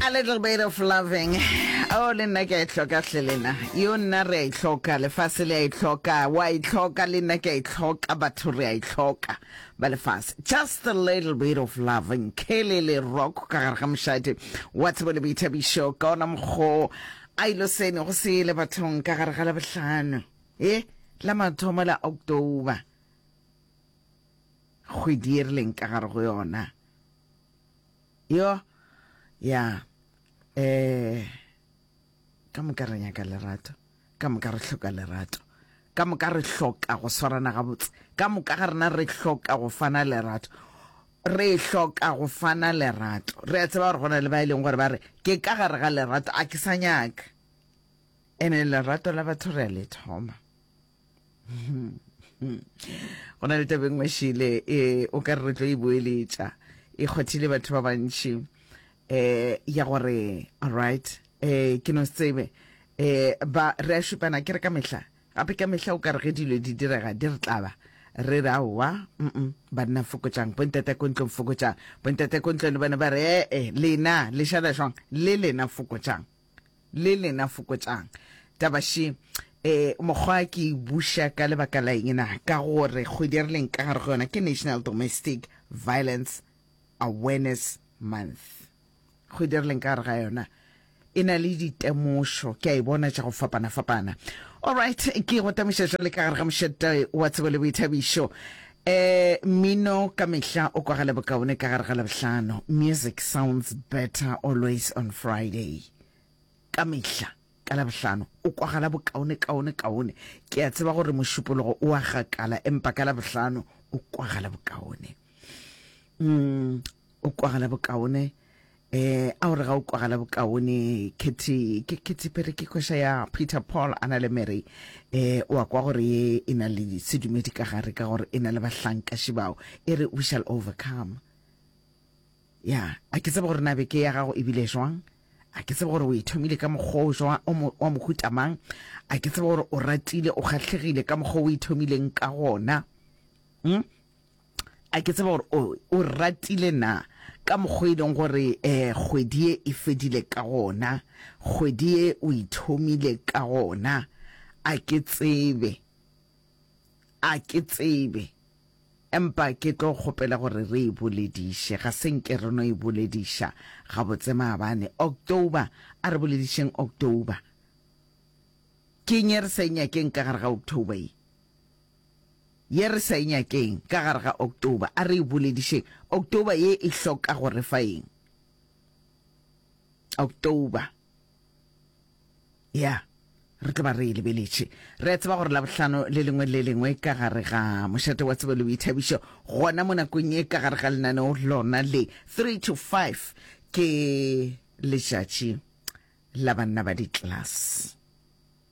a little bit of loving o oh, le nna ke a itlhoka e hle lena yo nna re a itlhoka e lefase le a itlhoka e wa itlhoka e le nna ke a itlhoka e batho re a itlhoka ba lefase just a little bit of loving ke le le rock ka gare ga mošadi wa tsebo le boithabišo ka ona mokgo a ilo sene go se le bathong ka gare ga la bohlano e la mathomo la october kgwedi e rileng ka gare go yona Yo, ya, eh, ka moka re nyaka lerato, ka moka re hloka lerato, ka moka re hloka go swarana gabotse, ka moka ga rena re hloka go fana lerato, re hloka go fana lerato. Re a tseba gore go na le ba e leng gore ba re, ke ka gare ga lerato, a ke sa nyaka. Ene lerato la batho re a le thoma. go na le taba e nngwe šele e o ka re re tlo e boeletša e kgothile batho ba bantši um eh, ya gore alright um eh, ke no se tsebe um ba re a šupana ke re ka mehla gape ka mehla o ka re ge dilo di direga di re tlaba re re aowa mm banna fokotsang bontate ko ntlong fokotsang bontate ko ntlong le bone ba re ee lena le šala jwang le lena fokotsang le lena fokotšang taba she um mokgwa ke e buša ka lebaka la eng na ka gore kgwedi re leng ka gare go yona ke national domestic violence awareness month kgwedi re leng ka gare ga yona e na le ditemošo ke a e bona tša go fapana-fapana allright ke go temoša jale ka gare ga mošete wa tsebo le boithabišo Ee, mmino ka mehla o kwagale bokaone ka gare ga Labohlano. Music sounds better always on Friday. Ka mehla ka Labohlano o kwagala bokaone kaone kaone. Ke a tseba gore mošupologo o a gakala empa ka Labohlano o kwagala bokaone. Mm. o kwagala bokaone eh a o re ga o kwagala bokaone kethe ke ke tsepere ke kwesha ya Peter Paul ana le Mary eh o a kwa gore ye e na le sedumedi ka gare ka gore e na le bahlanka shibao e re we shall overcome ya a ke tsebe gore na beke ya gago e bile jwang a ke tsebe gore o e thomile ka mokgwa o jwa wa mohuta mang a ke tsebe gore o ratile o kgatlhegile ka mokgwa o e thomileng ka gona mm? a ke tseba gore o o ratile na ka mokgwa e leng gore eh kgwedi e e fedile ka gona kgwedi e o ithomile ka gona a ke tsebe a ke tsebe empa ke tlo kgopela gore re e bolediše ga se nke re no e bolediša gabotse maabane october a re boledišeng october ke nye re sa e nyakeng ka gare ga october e ye re sa e nyakeng ka gare ga October. A re e boledišeng. October ye e hloka go re fa eng? October. Ya, re tlo ba re e lebeletše. Re a tseba gore la bohlano le lengwe le lengwe ka gare ga mošate wa tsebo le boithabišo gona mo nakong ye ka gare ga lenaneo lona le 3 to 5 ke letšatši la banna ba di-class.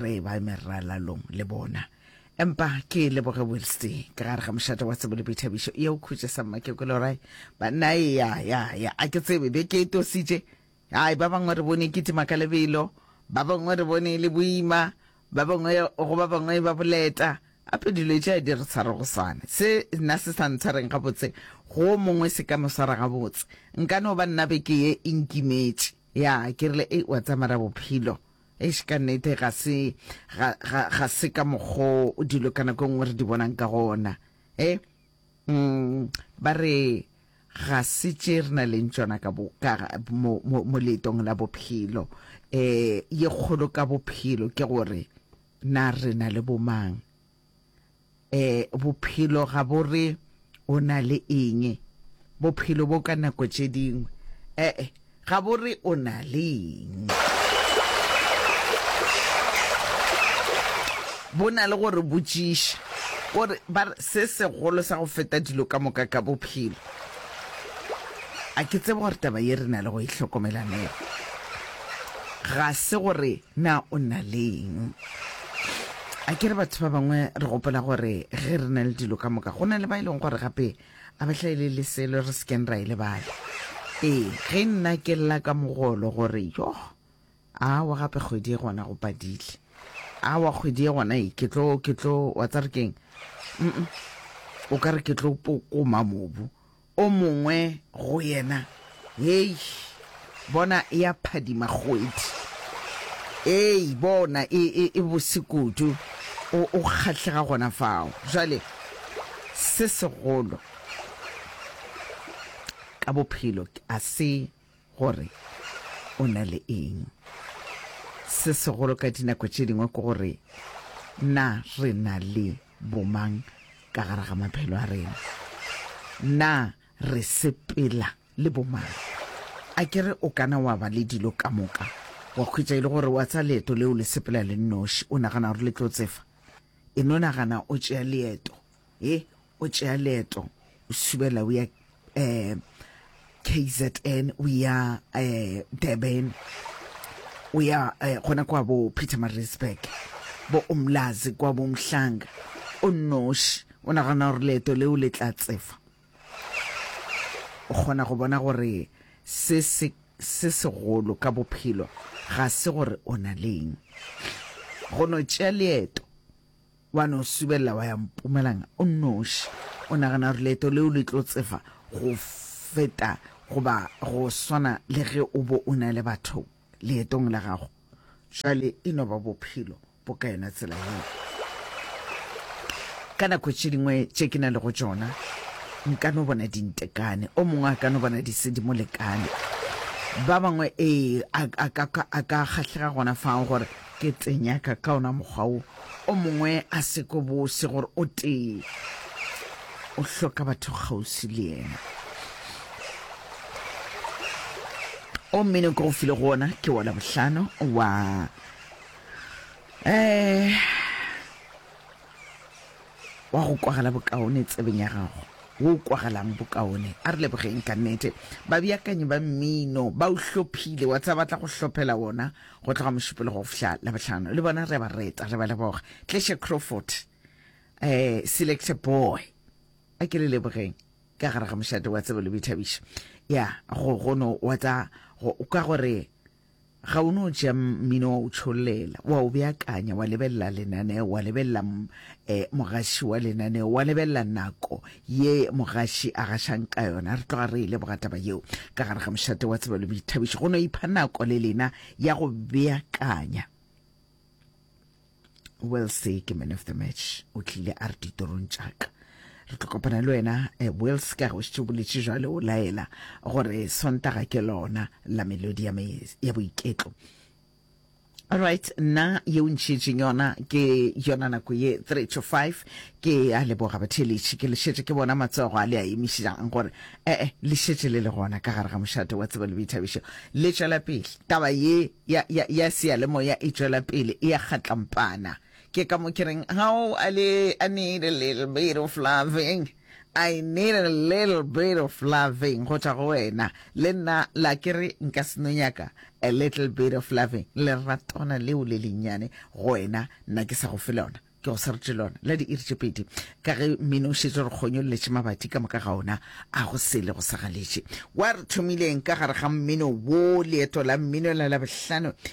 re ba meralalong le bona empa ke leboge wilste ka gare ga mošate wa tsebo le boithabišo ye o khutše sa mmakekolora banna e ya ya ya a ke tsebe be ke e tositše ai ba bangwe re bone kitima ka lebelo ba bangwe re bone e le boima ba bangwe go ba bangwe ba boleta gape dilo tše a di re tshware go swane se nna se sa ntshwareng gabotse go mongwe se ka mo swara gabotse nka no ba nna beke ye e nkimetše Ya, ke rile, Ei, wa tsaya mara bophelo. Eish, ka nnete, ga se, ga, ga, ga se ka mokgo dilo ka nako e nngwe re di bonang ka gona. E, mm, ba re, ga se tše re na leng tšona ka bo, ka, mo, mo, mo leetong la bophelo. E, ye kgolo ka bophelo ke gore, na re na le bomang? e bophelo ga bo re o na le eng bophelo bo ka nako tše dingwe ee ga bo re o na le eng bo na le gore botšiša gore ba se segolo sa go feta dilo ka moka ka bophelo a ke tsebe gore taba ye re na le go e hlokomelanela ga se gore Na o na le eng? A ke re batho ba bangwe re gopola gore ge re na le dilo ka moka, go na le ba e leng gore gape a ba hlaele le selo re sekeng ra e lebala. Ee, ge nna ke lla ka mogolo gore yoh, awa gape kgwedi e gona go padile, awa kgwedi e gona e ke tlo ke tlo wa tsa re keng, o ka re ke tlo pokoma mobu o mongwe go yena, Hei, bona e a phadima kgwedi. Hei, bona, e, e, e bose kudu. O, o kgahlega gona fao. Bjale, se segolo ka bophelo, a se. gore o na le eng. Se segolo ka dinako tše dingwe ke gore na re na le bomang ka gare ga maphelo a rena, na re sepela le bomang. A ke re o kana wa ba le dilo ka moka wa khwetša e le gore wa tsa leeto leo le sepela le nnoši, o nagana gore le tlo tsefa, e no nagana o tšea leeto. e o tšea leeto o subela o ya um kzn o ya um durban o ya um gona kwa bo peter marisburg bo umlazi kwa bo mhlanga o nnoši o nagana gore leeto leo le tla tsefa o kgona go bona gore se se se segolo ka bophelo ga se gore o na leng go no tšea leeto Wa no subelela wa ya Mpumalanga o nnoši. O nagana gore leeto leo le tlo tsefa go feta goba go swana le ge o bo o na le batho leetong la gago? Jwale e no ba bophelo bo ka yona tsela yeo. Ka nako tše dingwe tše ke na le go tšona, nka no bona dintekane, o mongwe a ka no bona disedimolekane, ba bangwe ee a ka kgahlega gona fao gore Ke tse nyaka ka ona mokgwa wo, o mongwe a se ko bose gore o tee o hloka batho kgausi le yena. O mmino ke go file go ona ke wa Labohlano wa eh wa go kwagala bokaone tsebeng ya gago wo o kwagalang bokaone a re lebogeng ka nnete babeakanyi ba mmino ba o hlophile wa tsa batla go hlophela wona go tloga mošupologo go fihla labohlano le bona re ba reta re ba leboga tleshe crawford um selector boy a ke le lebogeng ka gare ga mošate wa tsebo le boithabišo ya go gono wa tsa ka gore ga o no ja mmino wa o tsholela wa o beakanya wa lebelela lenaneo wa lebelela E, mogaši wa lenaneo, wa lebelela nako ye mogaši a gašang ka yona. Re tloga re e leboga taba yeo. Ka gare ga mošate wa tsebelo boithabišo, go no ipha nako le lena ya go beakanya. Will se ke man of the match, o tlile a re ditorong tšaka re tlo kopana le wena eh, wills ka go šitše boletše jwale o laela gore sontaga ke lona la melodi ya boiketlo Alright, nna ye o ntšhietšeng yona ke yona nako ye 3 to 5 ke a leboga batheeletši ke lešetše ke bona matsogo a le a emišang gore ee eh, le šetše le le gona ka gare ga mošate wa tsebo le boithabišo le tšwela pele taba ye ya, ya, ya seyalemoya e tšwela pele e ya kgatlampana Ke ka mo ke reng, how a le, I need a little bit of loving. I need a little bit of loving go tšwa go wena le nna la ke re nka seno nyaka a little bit of loving leratwana leo le lennyane go wena nna ke sa go fe lona ke go serete lona la diiri tše pedi ka ge mmino o šetse re kgonyolletše mabati ka moka ga ona a go sele go sa galetše wa re thomileng ka gare ga mmino wo leeto la mmino la labohlano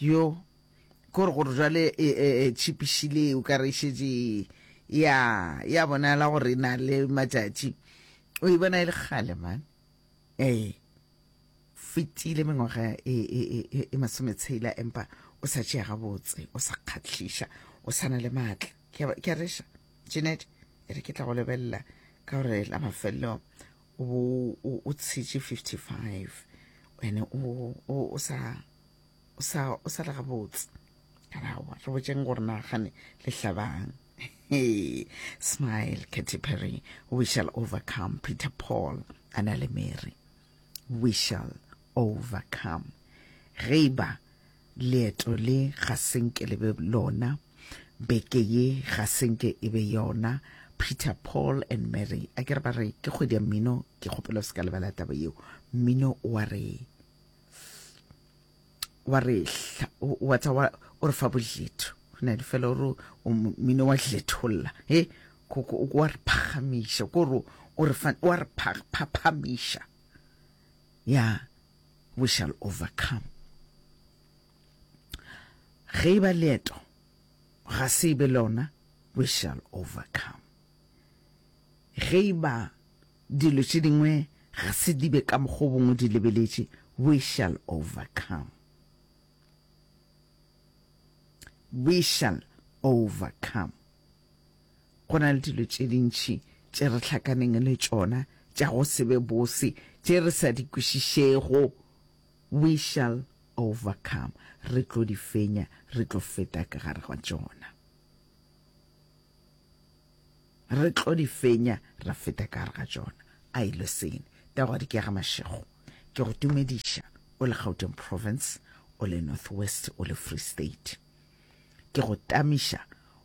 Yo, kore gore jwale e, e, e tšhipišile o ka re šetše ya ya bonala gore e na le matšatši o e bona e le kgale man ee fetile mengwaga e, e, e, e masometshela empa o sa tšea gabotse o sa kgatlhiša o sa na le maatla ke a reša jeanette e re ke tla go lebelela ka gore la mafelelong bo o tshitše 55 ene o sa o sa o sa lega botse kana wa re botšeng gore na gane le hlabang hey smile Katy Perry we shall overcome Peter Paul ana le Mary we shall overcome ge ba Leeto le ga se nke le be lona, beke ye ga se nke e be yona. Peter, Paul and Mary, a ke re ba re ke kgwedi ya mmino, ke kgopela o se ka lebala taba yeo. Mmino wa re wa re wa tsa wa o re fa boletho na di fela ore mmino wa letholla he ko ko wa re phagamisha ko ro o re fa wa re phaphamisha ya We shall overcome. Ge e ba leeto ga se e be lona, we shall overcome. Ge e ba dilo tše dingwe ga se di be ka mokgwa o bongwe di lebeletše, we shall overcome. We shall overcome. Go na le dilo tše dintši tše re hlakaneng le tšona tša go se be bose tše re sa di kwešišego. We shall overcome. Re tlo di fenya, re tlo feta ka gare ga tšona. Re tlo di fenya, ra feta ka gare ga tšona. A e lo sene. Tago di kega mašego. Ke go tumediša o le Gauteng Province, o le North West, o le Free State. Ke go tamiša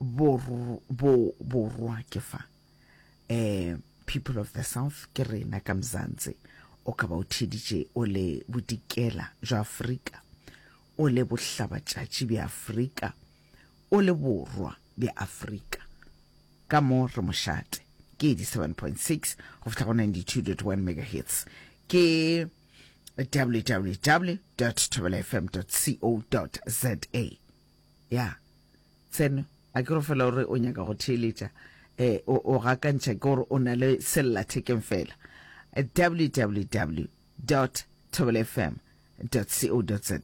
Borwa ke fa um people of the south ke rena ka mzansi o ka ba o theditše o le bodikela jwa afrika o le bohlabatšatši bja afrika o le borwa bja afrika ka mo re mošate ke 87.6 go fihla go 92.1 megahertz ke www.tobelafm.co.za Ya. Tseno, a ke go fela o re o nyaka go theeletša, e, o, o gakantšha ke gore o na le sellathekeng fela. www dot thobelofm dot co dot za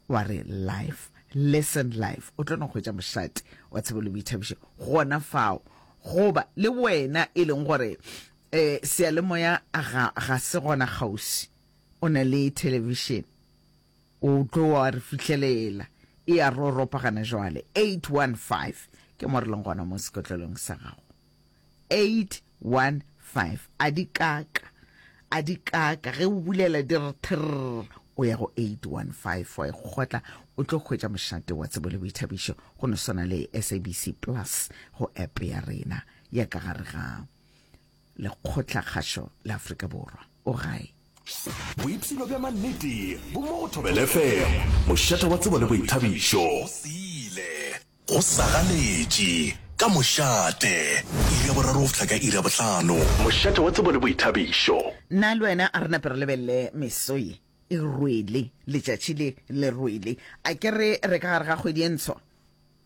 wa re live listen live o tlo no hwetša mošate wa tshebo le boithabišo gona fao goba le wena e leng gore eh seyalemoya ga ga se gona kgausi o na le television O tlo wa re fihlelela. E a roropa gana jwale. 815 Ke mo re leng gona mo sekotlelong sa gago. 815 A di kaka, a di kaka. Ge o bulela di re thirr. O ya go 815 wa e kgotla, o tlo hwetša mošate wa tsebo le boithabišo go no swana le SABC Plus go app ya rena ya ka gare ga lekgotlakgašo la afrika borwa o gae boipshino bja mannete bo mo go thobelefm mošata wa tsebo le boithabišo go siile go sagaletše ka mošate iri ya boraro go fihla ka iri ya bohlano mošata wa tsebo le boithabišo nna le wena a re nape re lebelele meso ye e rwele letšatši le le rwele a ke re re ka gare ga kgwedi e ntsho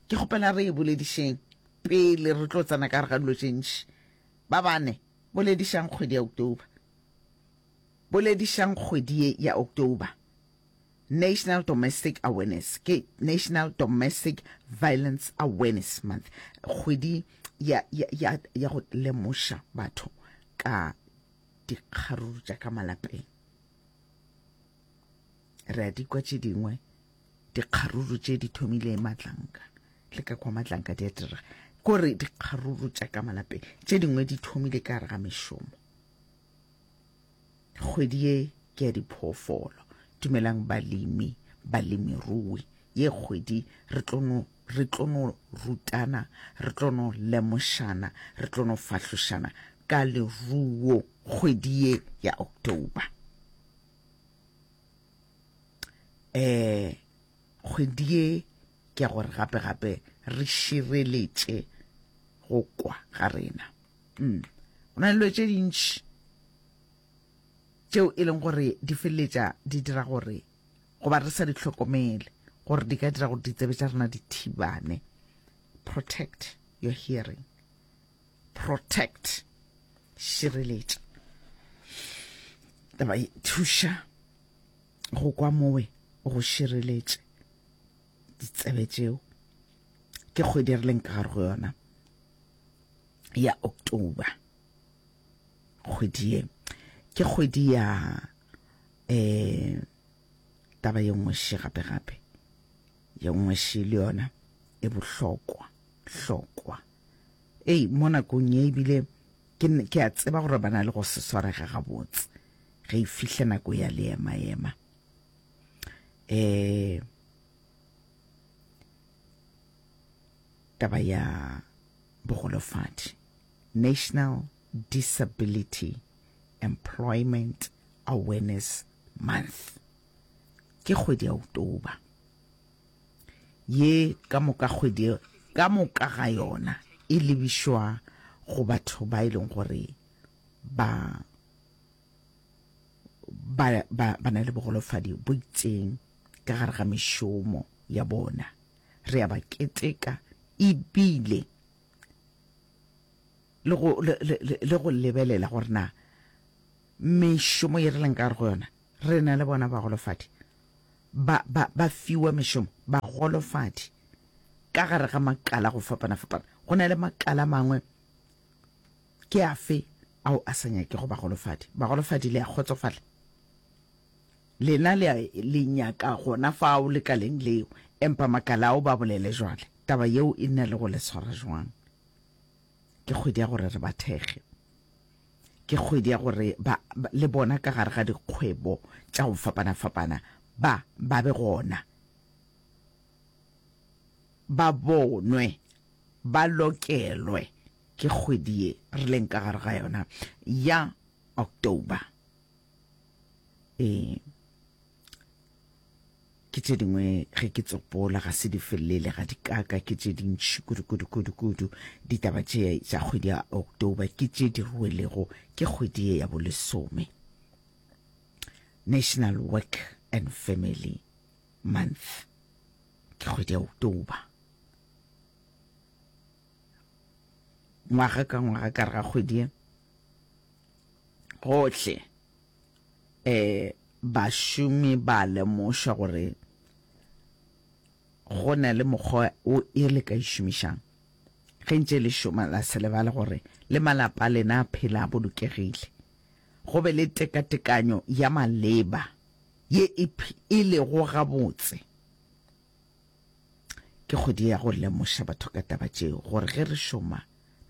ke kgopela re e boledišeng pele re tlo tsena ka gare ga dilo tše ntši Ba bane, Boledišang kgwedi ya October Boledišang kgwedi ye ya October National Domestic Awareness ke National Domestic Violence Awareness Month, kgwedi ya, ya, ya, ya go lemoša batho ka dikgaruru tša ka malapeng. Re a di kwa tše dingwe dikgaruru tše di thomile matlanka le ka kwa matlanka di a dira kore dikgaruru tša ka malapeng tše dingwe di thomile ka gare ga mešomo kgwedi ye ke ya diphoofolo dumelang balemi balemirui ye kgwedi re tlono re tlono rutana re tlono lemošana re tlono fahlošana ka leruo kgwedi ye ya october eh kgwedi ye ke ya gore gape gape re šireletše go kwa ga rena mm. go na le tše dintši tšeo e leng gore di feleletša di dira gore goba re sa di tlhokomele gore di ka dira gore ditsebe tša rena di thibane protect your hearing protect šireletša taba e thuša go kwa mowe go šireletše ditsebe tšeo ke kgwedi re leng ka gare go yona ya october kgwedi ye ke kgwedi ya um taba ye nngwe še gape gape ye nngwe še le yona e bohlokwa hlokwa Ei, mo nakong ye ebile ke, ke a tseba gore ba na le go se swarega gabotse ge e fihle nako ya leema-ema. Eh, taba ya bogolofadi National Disability Employment Awareness Month ke kgwedi ya October. ye ka moka kgwedi ka moka ga yona e lebišwa go batho ba e leng gore ba ba ba ba na le bogolofadi bo itseng ka gare ga mešomo ya bona re a ba keteka ebile le go le go lebelela gore na mešomo ye re leng ka gare go yona Re na le bona bagolofadi ba, ba, ba fiwa mešomo, bagolofadi ka gare ga makala go fapana-fapana. Go na le makala mangwe, ke afe ao a sa nyakego bagolofadi? Bagolofadi le a kgotsofala. Lena le, le nyaka gona fao lekaleng leo, empa makala ao ba bolele jwale. Taba yeo e nna le go le tshwara jwang? Ke kgwedi ya gore re ba thekge. Ke kgwedi ya gore ba, ba le bona ka gare ga dikgwebo tša go fapana-fapana ba, ba be gona, ba bonwe, ba lokelwe ke kgwedi ye re leng ka gare ga yona ya October. Ee. ke tše dingwe ge ke tsopola ga se di felele ga dikaka ke tše dintšhi kudu-kudu-kudu-kudu ditaba tše tša kgwedi ya october ke tše di ruelego ke kgwedi ye ya bolesome national work and family month ke kgwedi ya october ngwaga ka ngwaga ka re ga kgwedi ye gohle e bašomi ba lemoša gore go na le mokgwa o e le ka išomišang ge ntše le šoma la se lebale gore le malapa lena a phela a bolokegile go be le tekatekanyo ya maleba ye e lego gabotse Ke kgwedi ya go lemoša batho ka taba tšeo, gore ge re šoma,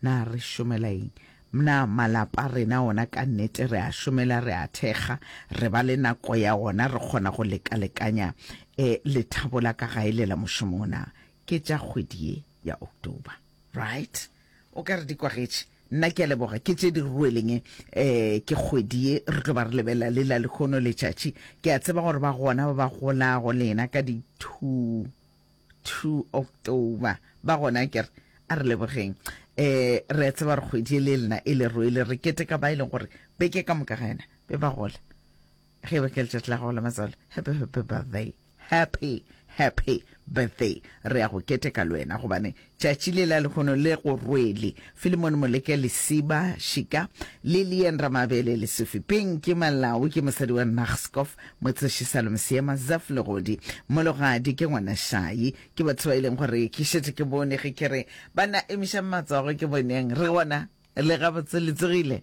na re šomela eng? Mna malapa a rena ona ka nnete re a šomela, re a thekga, re ba le nako ya ona, re kgona go lekalekanya e, lethabo la ka gae le la mošomong na ke tša kgwedi ye ya October, right? O ka re di kwagetše. Nna ke a leboga, ke tše di rweleng e, ke kgwedi ye, re tlo ba re lebelela le la lekhono letšatši. Ke a tseba gore ba gona ba ba golago le yena ka di two, two October. Ba gona ke re, a re lebogeng. E, re a tseba gore kgwedi ye le lena e le rwele, re keteka ba e leng gore beke ka moka ga yena be ba gola. ge ba ke letšatši la gago la matsalo happy happy birthday happy happy birthday re ya go keteka le wena gobane tšatši le la lekgono le go rwele filemone moleke lesiba šika le lien ramabele le sefi peng ke malao ke mosadi wa naxcof motseši salome seema zaf legodi mologadi ke ngwana šai ke batho ba e leng gore ke šetse ke bone ge ke re ba na emišang matsogo ke boneng re gona le gabotse le tsogile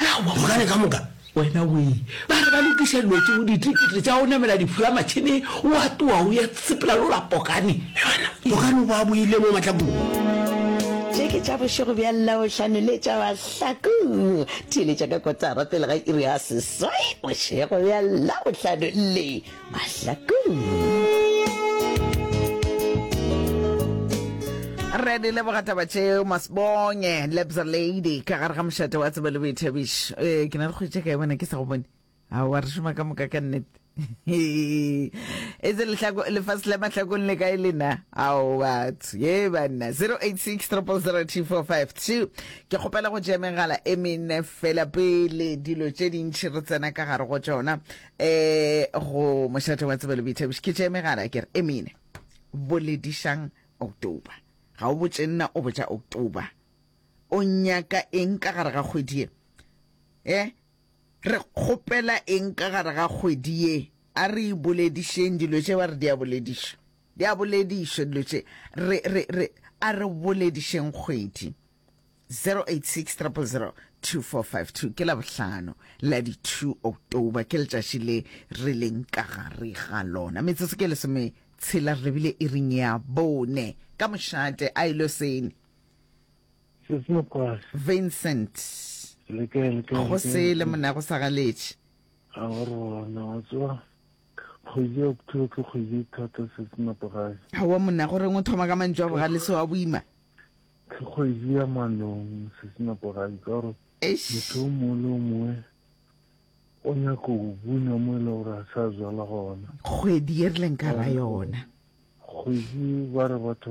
Aowa, mogare ka moka wena we ba re ba lokiša dilotše go ditikete tša go namela difulamatšhene wa toa o ya sepela lola pokane yona pokane o ba boile mo matlakong tše ke tša bošego bja labohlano le tša mahlaku theeletša ka kotara pele ga iri ya seswai bošego bja labohlano le mahlakong re di leboga taba tšeo masbonye lebza lady ka gare ga mošate wa tsebo le boithabišo ee ke na le kgwetše ka e bona ke sa go bone a wa re šoma ka moka ka nnete e se lefase la mahlakong le kae lena ao batho ye banna 086 3002452 ke kgopela go tšea megala e mene fela pele dilo tše dintšhi re tsena ka gare go tšona eh go mošate wa tsebelo boithabiši ke tšee megala ke re emine boledišang october ga o botše nna o botša october o nyaka eng ka gare ga kgwedi ye eh re kgopela eng ka gare ga kgwedi ye a re boledišeng dilo tše ba re di a bolediša di a bolediša dilo tše re re re a re boledišeng kgwedi 0860002452 ke la bohlano la di 2 october ke letšatši le re leng ka gare ga lona metsotso ke lesome tshela re bile e ring ya bone ka mošate a ilo e sene vincent go se le mona go sa galetše a rona wa tswa kgwedi ya october ke kgwedi thata se se napogae ga wa mona gore ngwe thoma ka mantšu a bogale se wa boima Ke kgwedi ya manong sesina porai ka gore motho o mongwe le o mongwe o nyako go buna mo e le gore a sa zwala gona. Kgwedi ye re leng ka ra yona. Kgwedi ba re batho